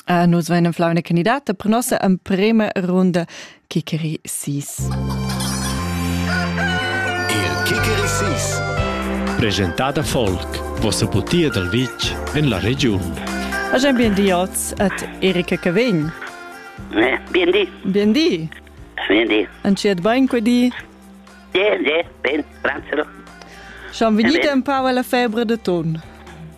Uh, nus vein en flauna candidata per nossa emprema runda Kikeri 6. Il Kikeri 6 Presentada Folk, vossa butia dal vitg en la regiun. Agen bien di oz et Erika Cavegn. Eh, bien di. Bien di. Bien di. Anciet bain que di? Bien, bien, ben, grazie. Schon vidite un po' la febbre de ton?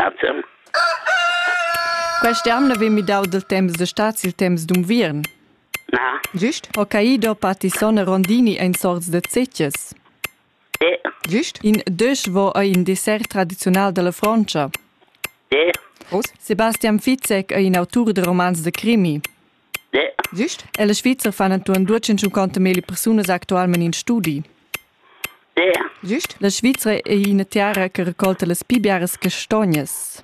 Grazie. Quest'ann havein midau dil temps da stad sil temps d'unviern. Na, Gist? Hokkaido, Patisson e Rondini ein sorts da zetges. de, Gist? In desch vo ei in dessert tradiziunal dalla Frontscha. de, Sebastian Fitzek ei in autur da romans da crimi. Gist, ella Svizra fan entuorn duecentocinquanta meli persunas actualmein in studi. Gist, la Svizra ei ina tiara che raccolta las pi biaras castognas.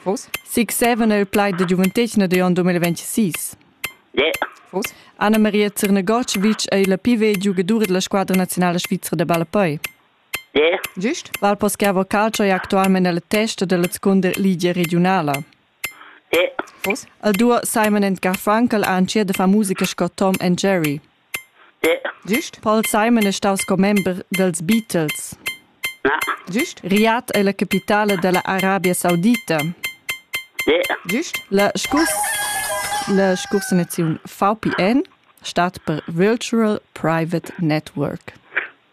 Fos? Sig seven è il plaid da giuventetgna da onn 2026. Fos? Anna Maria Zernagocevic è la più vecchia giocadora della squadra nazionale svizra da ballapei. Gist? Val Paschiavo Calcio è attualmente alla testa della seconda liga regionale. Vus al duo Simon and Garfunkel ha entschiet da far musica sco Tom and Jerry. Giust? Paul Simon è stau sco member dels Beatles. Giust? Riyadh è la capitale della Arabia Saudita. Giust? La scurs la scursanaziun VPN stat per Virtual Private Network.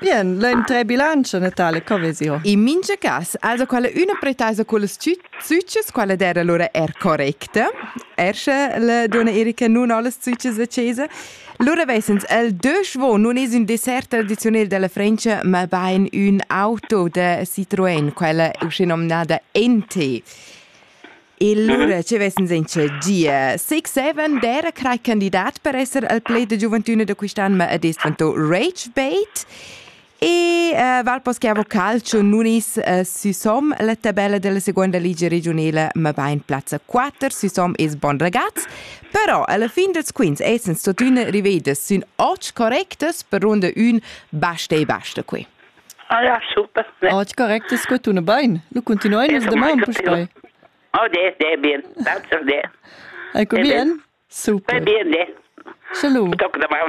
Bien, l'entré bilancio Natale co vesi ho? In mincha cas, also quella üna pretesa cullas züchas, quella d'eira lura eir correcta. Er sche la duonna Erika nun ho las züchas a chesa. Lura vesans el desch vo nun es ün dessert tradiziunel della Frencha, ma bain ün auto da Citroën, quella usche nomnada NT. E lura ci ves'ns in che gia six seven d'era crai candidat per esser al play da giuventüna da quist'an, ma ed es dvantò ragebait. E uh, val poss che avo calcio nunis uh, süsom la tabella della seconda ligia regionela, ma va in plazza 4, süsom es bon ragazz. Però alla fin dels quints essens totüna rivedas sün och correctas per ronda 1 basta e basta qui. Ah ja, super. Ne. Oggi correct es que tuna bain. Lu continuai nus damaun puspei. Oh, de, de, bien. Danke de. Ecco bien? Super. Bien, de. Salut.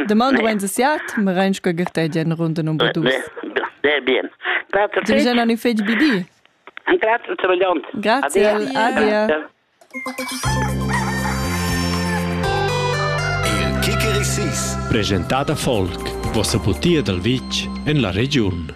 Damaun du 27, me reinschco gertegia in runde number 2. De, bien. Grazie. Tu già non feci bidi? Grazie, Grazie. Adia. Il Kikeri sis. Presentada folk. Vossa butia dal vitg en la regiun.